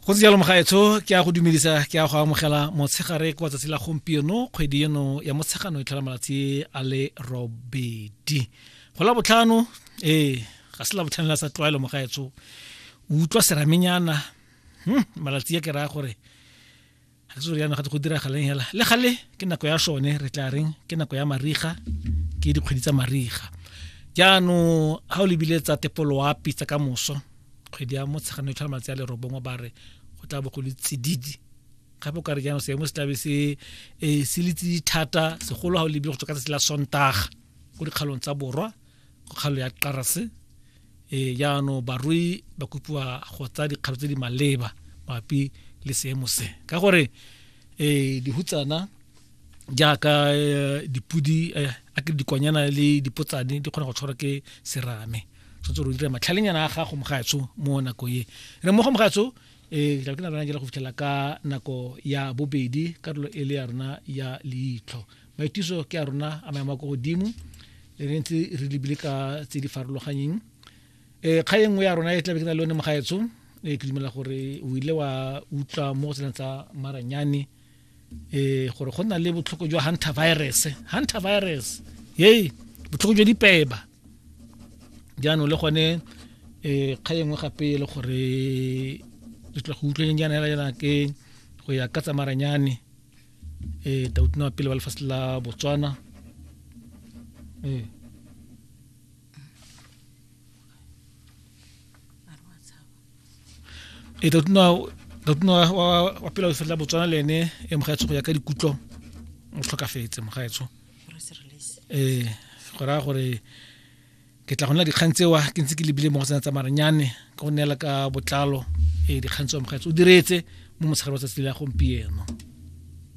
go se jalo mogaetsho ke a go dumedisa ke a go amogela motshegare kwa tsatsi la gompieno kgwedi eno ya motshegano e tlhola malatsi a le robedi go la botlhano ee ga se la botlhano la sa tlwaelo mogaetsho o utlwa seramenyana hmm, malatsi a ke raya gore ga ke soriano gate go diragalang hela le gale ke nako ya sone re tla reng ke nako ya mariga ke dikgwedi tsa mariga jaanong ga o lebile tsa tepoloapi tsa ka moso kgwedi ya motshegano e tlhola malatsi a lerobongwe ba re go tla bo go le tsididi gape o ka re jaanong seemo se tlabe se e, se le tsididi thata segolo ga o lebile go tswa ka tsatsi la sontaga ko dikgalong tsa borwa kgalo ya qarase e jaanong barui ba kopiwa go tsaya dikgato tse di maleba mapi le seemo se ka gore um dihutsana jaaka e, dipudi e, a ke dikwanyana le dipotsane di kgona go tshwarwa ke serame tshwanetse re dira matlhalenyana a gago mogaetsho mo nako e re mo go mogaetsho e tla ke na rena ke go fitlhela ka nako ya bobedi karolo e le ya rona ya leitlho maitiso ke a rona a maemo a ko godimo le re ntse re lebile ka tse di farologanyeng um eh, kga e nngwe ya rona e tlabe ke na le one mogaetsho e ke dumela gore o ile wa utlwa mo go tsenang tsa maranyane um gore go na le botlhoko jwa hunter virus hunter virus ye botlhoko jwa dipeba jaanong le gone um eh, kga engwe gape e le gore re tla go utlweng jaana ke go ya ka tsamaranyane eh tautino wa pele ba lefatshe la botswana eh e tautino tautino wa pele wa lefatshe la botswana le ene e mogaetsho go ya ka dikutlo o tlhokafetse mogaetsho eh go raya gore ke tla go nna dikgang tsewa ke ntse ke lebile mo go tsena tsa maranyane ka go neela ka botlalo e dikgang tsewa mogaetse o diretse mo motshegare wa tsatsi la gompieno